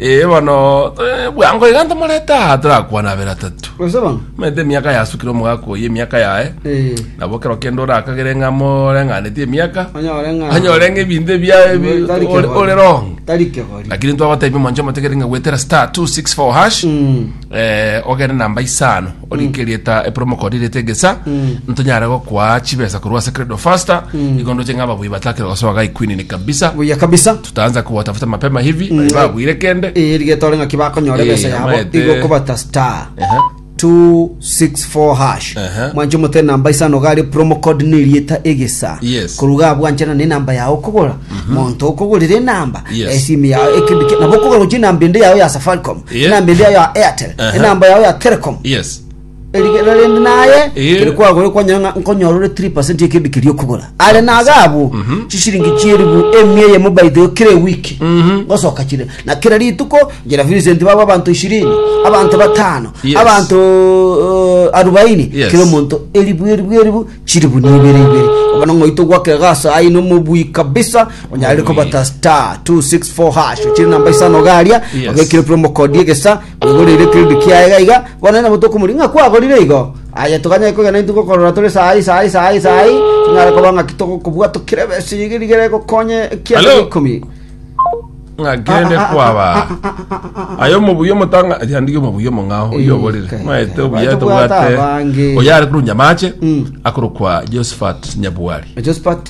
Ee, bono eh, bwango iga ntomorete aha torakwana abere atatu Gose bang'o? omanyete emiaka yasukire omogaka oyo emiaka yaye Eh, nabo kero kende orakagere ng'a moreng'aneti emiaka onyore ng'a- anyore ng'a ebinto ebiaye bi- Tari ore- kegori. ore wrong Tari kegori. lakini ntwagotebi omonche omotegete ng'a gwetera star 264 hash Mm. eh, ogere namba isano orike rieta epromo code rieta egesa Mm. ntonyare gokwaa chibesa korwa ase credo faster igo ndoche ng'a ababui batakire gosoa gai queen ni kabisa Buya kabisa. tutaanza kuwatafuta mapema hivi mm. babuire kende iri getore ng'aki bakonyora eh, ebesa yabo igo kobata star uh-huh. 264 hash uh-huh. mwanche omote namba isano gari promo code ne rieta egesa yes. koruga abwanchana ne namba yao okogora mm-hmm. monto mm-hmm. okogorira enamba yes. esimu yao ekebike nabo okogora gochi enamba ende yao ya safaricom yes. enamba ende yao ya airtel uh-huh. enamba yao ya telecom yes Erigena rende naye Eh. kere kwagore kwanyora ng'a nkonyora ore 3% y'ekebi keria okogora are naga abwo chisiringi chieribu emia eyemo by the way kera ewiki gosoka chire na kera rituko njera Vincent baba abanto ishirini abanto batano Yes. abanto uh, arubaini Yes. kera omonto eribu eribu eribu chiribu na ibere ibere bono ng'oito gwakera gasa ayi nomobui kabisa onyare Omobui. kobata star 264 hash chiri namba isano garia Yes. ogekire promo code egesa Omogoreire kirindi kiaye iga iga, bono nabo tokomoria ng'a kwagorire igo. Aye toganyare kogenda intwe gokorora tore saa eye, saa eye, saa eye, saa eye, tonyare koba ng'aki togokobua tokire besa iga rigere gokonye ekianda Hello? g'ikomi. ng'a kende kwaba aye omobuya omotanga yandige omobuya omong'ao Eh, oyoborire kai, maete kai. obuya Baete tobwate bwata abange. oyare korunja amache Mm. akorokwa josephat nyabuari Josephat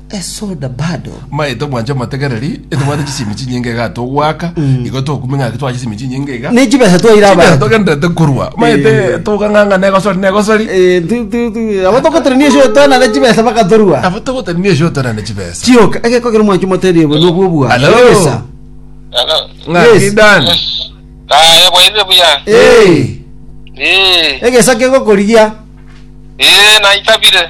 esoda bado. Mbae tobwanche omotegereri, etobwate chisimi chinyinge iga togoaka, igo tokumia ng'aki twache chisimi chinyinge iga. Ne chibesa twaire Chibesa abanto. togenderete korwa, mbae Eh. te- tokang'ang'a negosori negosori, Eh, tu- tu- tu- abo togoterania esho twana ne chibesa bakatorua. abo togoterania esho tore ne chibesa. Chioka egekogera mwancho moterie bo nobwo bwa. Hello. Chibesa. Hello. Ng'aki Yes. Dan. Yes. Ah, ebwaire buya. Eh. Eh. Egesa kegokorigia. Eh, naitabire.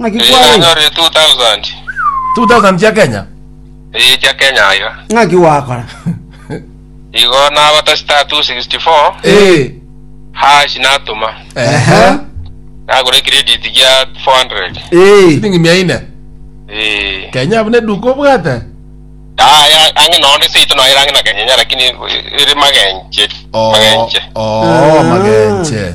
Ng'aki Eh, kware? nanyorire 2000 2000 chia kenya eh, chia kenya aiga Ng'aki gwakora? igo nabata star 264 Eh, hash natuma ehe nagura credit gia 400 Eh. silingi mia ine eh kenya abune duka obwate aya ange none seito naira ange nakanyenya lakini iri magenche magenche Oh, oh, magenche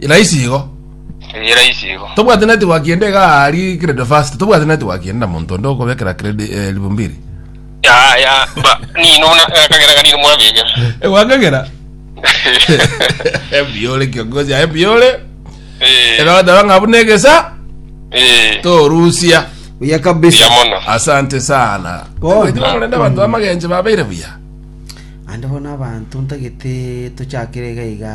Raisi igo. Eye raisi igo. Tobwate network ende iga ari credit fast. Tobwate network ende na monto onde okobekera credit eh, elfu mbili. Ya ya ba nino buna akagera kanino mwabega. Egwakagera. Ebiore kiongozi aye biore. Eh. Ega dawa ngabu negesa Eh. torusia. buya kabisa Yamono. Asante sana. Bono. Eti bakorenda abantu bamagenje babeire buya. ande bono abanto ntagete tochakire iga iga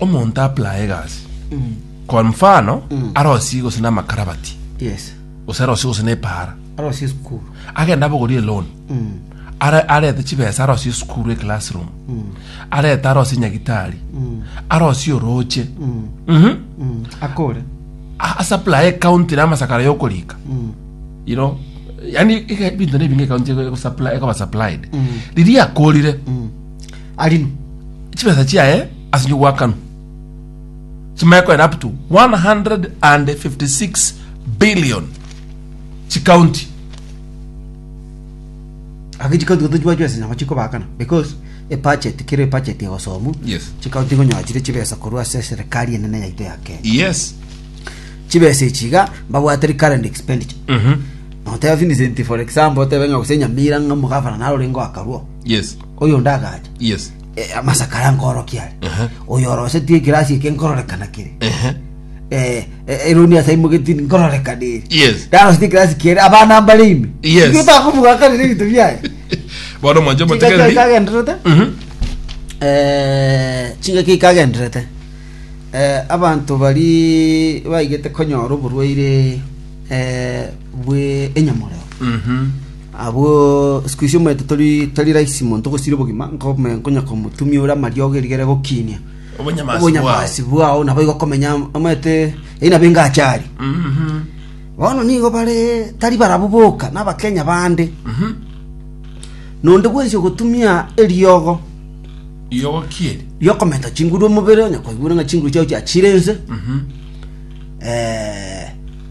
omonto apply egasi kwa mfano arosie gose na amakarabati yes gose arosie gose na epara arosi esukuru agenda abogorie loan Are- arete chibesa arosie esukuru eclassroom arete arosie nyagitari arosie oroche Mhm. akore A- asupply ekaunti na amasakara yokorika you know yani ike- ebinto nebinge ekaunti ekosupply- ekoba supplied riria akorire Arinu chibesa chiaye ase nyugwakanu chimanye koenda up to 156 billion chikaunti Ake chikaunti goto chibachwe ase nyongo chikobakana because ebudget kero ebudget egosomwa Yes. chikaunti ngonyoa chire chibesa korwa ase eserekari enene yaito ya Kenya yes chibesa echi iga mbabwateri current expenditure noteba Vincent for example otebe ng'a gose Nyamira ng'a omogavana narore ngoakarwo yes Oyonde agacha. Yes. Eh, amasakara nkoorokia are. Aha. Oyo orosetie ekirasi eke nkororekana kere. Ehe. Eh, eh, eroni ase imogeti nkororekana ere. Yes. Ndarosetie ekirasi kere abana mbare ime. Yes. Igo takomugakanire ebinto biaye. Bono omwancho Chingaki omotegereri. ikagenderete. Mhm. Eh, chingaki ikagenderete. Eh, abanto bari baigete konyora oborwaire eh, bwe enyamoreo. Mhm. Abwo isiko isio omanyete tori tari rahisi monto gosira obogima, nkome- nkonya komotumia ore amariogo erigere gokiinia Obonyamasi obonyamasi bwao naboigo okomenya omanyete eyio nabo engache aria Mhm. bono nigo bare tari barabwo boka na abakenya bande Mhm. nonde bwensi ogotumia eriogo Riogo ki eri? riokomenta chinguru omobere onye kwaigure ng'a chinguru chiao chiachire ense Mhm. eh,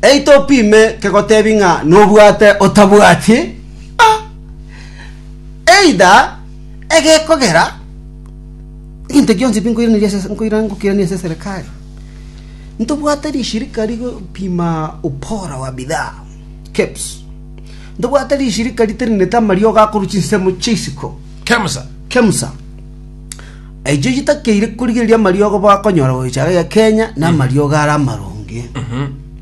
Eita opime kegotebi ng'a nobwate otabwati, eida egekogera, egento gionsi pi nkoiraneria ase nkoira ngokiirania ase eserekari. Ntobwate rishirika rigopima ubora wa bidhaa, KEBS. Ntobwate rishirika riterenete amariogo akorwa chinsemo chia isiko, KEMSA. KEMSA. Echio chitakeire korigereria amariogo bakonyora gochara iga Kenya na amariogo are amaronge.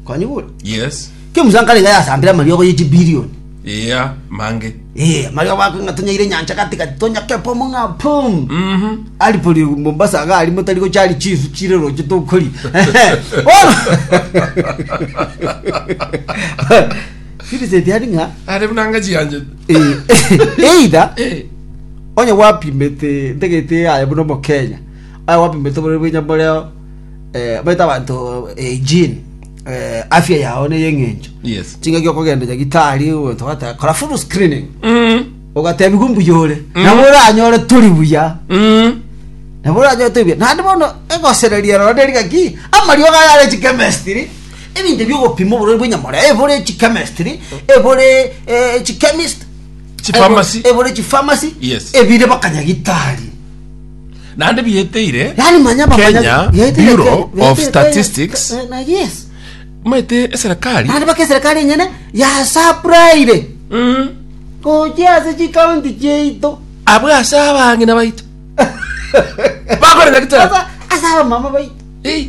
Kwanyigure? Yes. Kio Musa nkarenge yasambire amariogo ye chibilioni. Iya mange. Eh, amariogo bakong'a tonyaire nyancha gati gati tonyake pomo ng'a pum. Mhm. Ari pori Mombasa aga ari motari gochari chisu chire roche tokori. Bono. Vincent ari ng'a Are buna ngachi yanje. Eh, either Eh, onye gwapimete ntegete aye buna omokenya aye gwapimete bore bwenya boreo eh, baita abanto eh, gene eh, afya yao neye eng'encho Yes. chingaki okogenda nyagitari ogonto gata kora full screening mm, ogatebigwa mbuya ore Mm. nabo oranyore turi buya mm, nabo oranyore turi buya nandi bono egosereria rora neri gaki amariogo ayare chikemestiri Ebinto bi'ogopima oborori bw'enyamore ebore chichemistry, ebore eh, chichemist, Chipharmacy. ebore- ebore chipharmacy, Yes. ebire bakanya gitari. naende biyeteire Yaani manya bamanya- Kenya yaitire Bureau Kenya, of yaitire Kenya. Statistics Eh, na yes. maete eserekari Naende baka eserikali enyene yasapraire Mm. gochia ase chikaunti chiaito. abwe ase abang'ina baito bakorera gitari Sasa ase abamama baito. Eh.